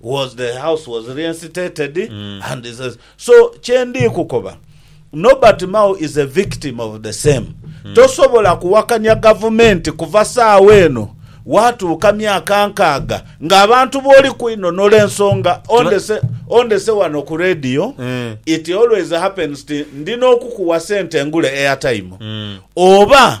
was the house was reinstated and he says so kyendi kukoba Nobert Mao is a victim of the same tosobola kuwakanya gavumenti kuva saawa eno watuuka myaka nkaaga nga abantu booli kwinonola ensonga ondese ondese wano ku radio it always happens ti ndina okukuwa sente ngule airtime oba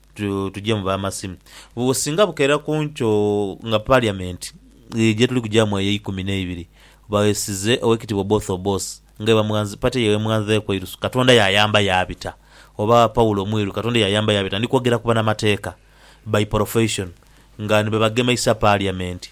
Tu, tuje mu b'amasimu. Bu, singa bukeera ku nkyo nga Parliament ye gye tuli kugyamu eyo eikumi n'eibiri, baghesize Owekitiibwa Oboth Obos, nga bwebamughanzi, party ye bwemughanzeeku eirusu, Katonda yaayamba yaabita, oba Paulo Mwiru, Katonda yaayamba yaabita, ndi kwogera ku banamateeka by profession, nga ni be bagemeisa Parliament.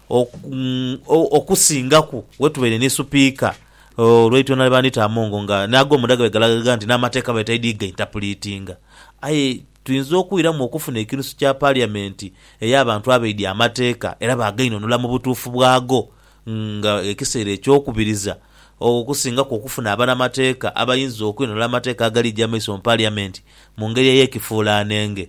okusingaku wetubaire ni supiika olwaitula nali bandhita Amongo nga n'ago munda gabaire galaga nti n'amateeka baire taidhi gaintapulitinga. Aye twinza okwiramu okufuna ekinusu kya paliyamenti ey'abantu abaidhi amateeka era baagainhonhola mu butuufu bwago nga ekiseera eky'okubiriza okusingaku okufuna abanamateeka abainza okwinhonhola amateeka agaliija mu maiso mu paliyamenti mu ngeri ey'ekifuulaanenge.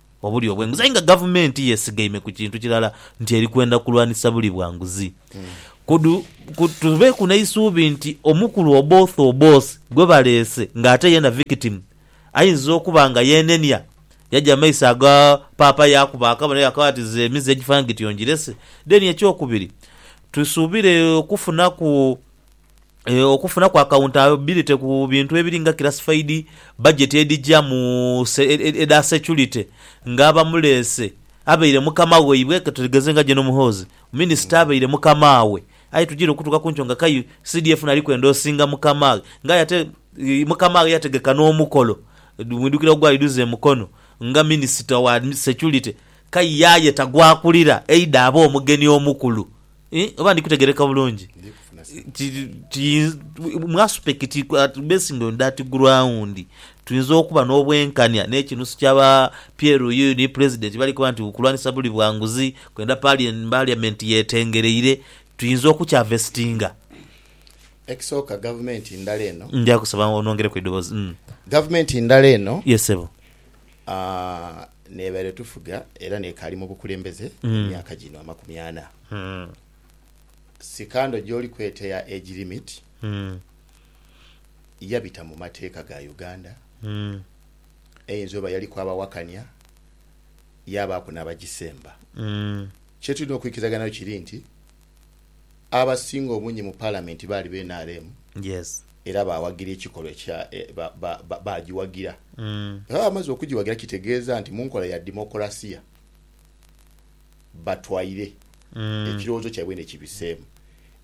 obuli obw'enguzi aye nga gavumenti yeesigaime ku kintu kirala nti eri kwenda kulwanisa buli bwa nguzi. Kudu, ku, tubeeku n'eisuubi nti omukulu Oboth Oboth gwe baleese ng'ate yeena victim, aidnza okuba nga yeenenia, yaja mu maiso aga Paapa yaakuba akabonero yaakaba ati Nze emize egifaanana gityo ngirese. Then eky'okubiri, tusuubire okufunaku. Okufunaku akawuntabilite ku bintu ebiri nga kirasifaidi, bajeti edhija mu edha securite nga abamuleese abaire mukama waibwe katwetegeze nga Gen Muhoozi, minisita abaire mukamaawe aye tujiire okutuuka ku nkyo nga kai CDF naali kwendoosinga mukamaaghe nga aye ate mukamaaghe yategeka n'omukolo mwidhukira ogwali dhuze e Mukono nga minisita wa securite kai ye aye tagwakulira eidha abe omugeni omukulu. Ii, Oba ndi kutegeereka bulungi, ki, ki, mwasuspekiti ati Basin ono Dati Guraundi, twinza okuba n'obwenkania n'ekinusu kya ba PLU ni Pulezidenti bali kuba nti kulwanisa buli bwa nguzi, kwenda Palien, Parliament yetengereire, twinza okukyavesitinga. Ekisooka, gavumenti ndala eno. Ndya kusaba onongereku eidhoboozi. Gavumenti ndala eno. Yes, ssebo. Aah. N'ebaire etufuga era n'ekaali mu bukulembeze emyaka gino amakumi ana. Sikando gy'oli kweta eya age limit yabita mu mateeka ga Uganda. Eyinza oba yaliku abawakania yaabaaku n'abagisemba. Kye tulina okwikirizaganhayo kiri nti. abasinga obungi mu Palamenti baali ba nrm era baawagira ekikolwa ekya baagiwagira. Bwe baba bamaze okugiwagira kitegeeza nti mu nkola ya ddimookulaasiya batwaire ekirowoozo kyaibwe ni kibiseemu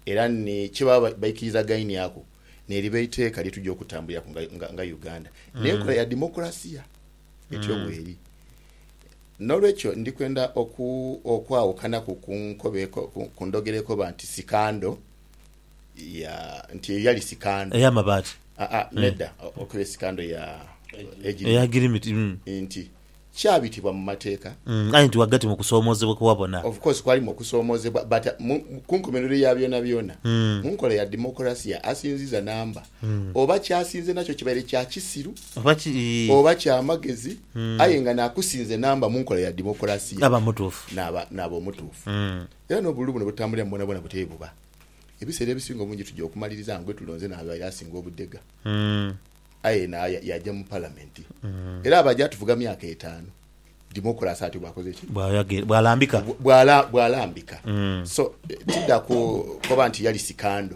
era ni kye baba baikirizaganyaku ni liba eiteeka lye tugya okutambuliraku nga Uganda n'enkola ya ddimookulaasiya. Etyo bweri. N'olwekyo ndi kwenda oku, okwawukanaku ku nkoba eko, ku, ku ndhogera ekoba nti sikando, ya, nti eyo yali sikando. Ey'amabaati. Aa, nedha, okuba esikando ya, egirimiti. Eya girimiti, mm. Nti, kyabitibwa mu mateeka. Mm, aye nti ghagati mu kusoomoozebwa kwe wabona. Of course kwalimu okusoomoozebwa, but mu, mu, ku nkomerero ya byonabyona, Mm. mu nkola ya demokulasiya, asinziza namba. Oba kyasinze nakyo kibaire kya kisiru oba kya magezi aye nga nakusinze namba mu nkola ya dimokulasia naaba omutuufu. Era n'obululu buno butambuliramu bwonabwona butyo bwebuba. Ebiseera ebisinga obungi tuja okumaliriza nga gwetulonze n'abaire asinga obudhega aye naye yaja mu palamenti era aba aja atufuga myaka etaanu dimokulasia atyo bwakoze ki? Bwalambika. Bwalambika. So tidha koba nti yali sikando.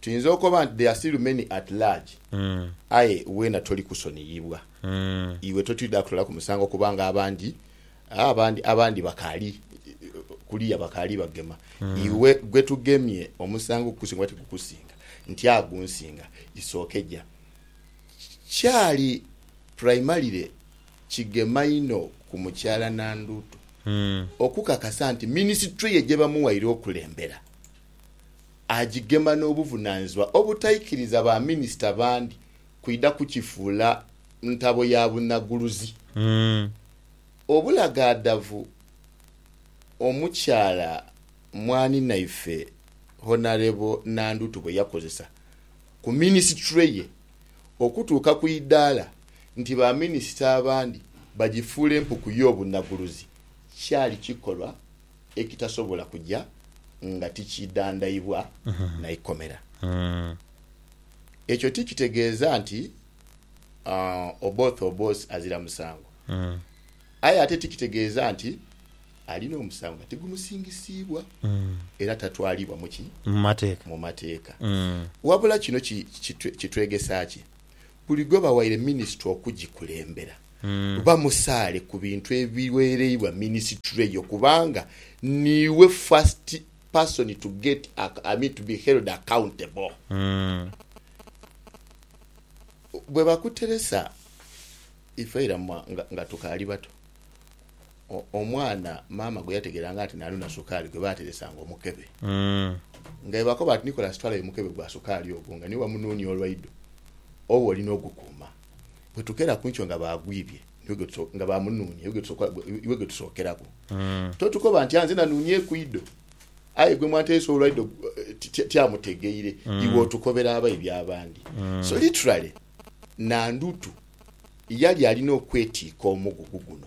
Tuyinza okoba nti, There are still many at large. Aye weena toli kusoniyibwa. Iwe totwidha kutolaku musango kubanga abandi, abandi, abandi bakaali kuliya bakaali bagema. Iwe gwe tugemye omusango gukusinga oba tigukusinga? Nti agunsinga. Isookeja. Kyali primarily kigema inho ku Mukyala Nandutu okukakasa nti minisitule ye gye bamuwaire okulembera. agigema n'obuvunaanyizibwa obutaikiriza ba minisita bandi kwidha kukifuula ntabo ya bunaguluzi obulagaadhavu omukyala mwaninaife Honarebo Nandutu bwe yakozesa ku minisitule ye okutuuka ku idaala nti ba minisita abandi bagifuule mpuku y'obunaguluzi kyali kikolwa ekitasobola kuja nga tikiidhandhaibwa na ikomera. Ekyo ti kitegeeza nti Oboth Obos azira musango, aye ate ti kitegeeza nti alina omusango nga tigumusingisibwa era tatwalibwa mu ki? Mu mateeka. Wabula kino kitwegesa ki? Buli gwe bawaire minisitule okugikulembera bamusaale ku bintu ebiweereibwa minisitule eyo kubanga niiwe first person to get ac, I mean to be held accountable. Bwe bakuteresa ife ira nga tukaali bato. Omwana maama gwe yategeranga nti naalu na sukaali gwe baateresanga omukebe. Nga bwebakoba nti Nicholas twalayo omukebe gwa sukaali ogwo nga niwe wamunuunia olwaidho, oba oli n'ogukuuma. Bwe tukeera ku nkyo nga baagwibye, nga baamunuunia, iwe gwe tusookeraku. Totukoba nti, Anze nanuunieku idho. Aye gwe mwanteresa olwaidho tiamutegeire, iwe otukobera abaibi abandi. So literally, Nandutu yali alina okwetiika omugugu guno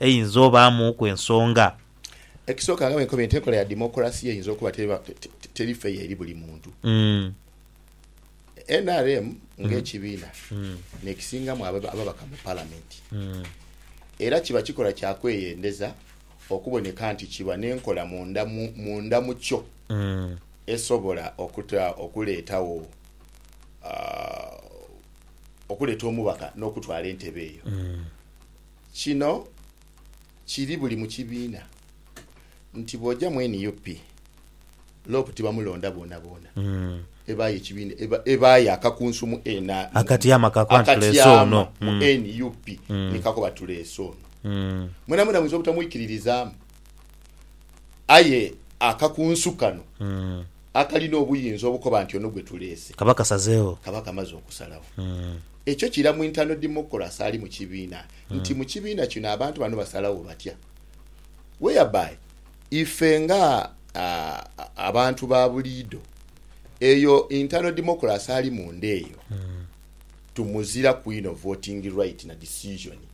Eyinza obaamuuku ensonga. Ekisooka nga bwe nkobye nti enkola ya demokulasiya eyinza okuba teri feya eri buli muntu. Nrm ng'ekibiina n'ekisingamu ababaka mu Palamenti era kiba kikola kya kweyendeza okuboneka nti kiba n'enkola munda mu kyo esobola okuleetawo okuleeta omubaka n'okutwala entebe eyo. Kino kiri buli mu kibiina nti bw'oja mu nup, lop tibamulonda boonaboona. Ebaayo ekibiina, ebaayo akakunsumu ena, Akatyama ka kuba nti tuleese ono. akatyama mu nup ni kakoba tuleese ono. Mwenamwena muyinza obutamwikiririzaamu. Aye akakunsu kano akalina obuyinza obukoba nti ono gwe tuleese kaba kasazeegho. Kaba kamaze okusalagho. Ekyo kira mu internal democracy ali mu kibiina nti mu kibiina kino abantu bano basalagho batya. Whereby ife nga abantu ba buliido eyo internal democracy ali munda eyo tumuziraku inho voting right na decision.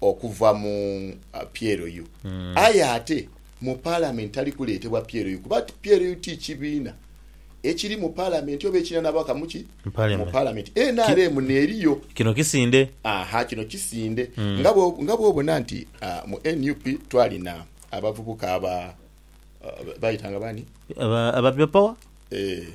okuva mu PLU aye ate mu Palamenti tali kuleetebwa PLU kuba PLU ti kibiina ekiri mu Palamenti oba ekirina n'ababaka mu ki? Mu Palamenti. Nrm n'eriyo. Kino kisinde. Aha, kino kisinde. Nga nga bw'obona nti mu nup twalina abavubuka aba, baayetanga baani? Aba, aba People Power? Eeh.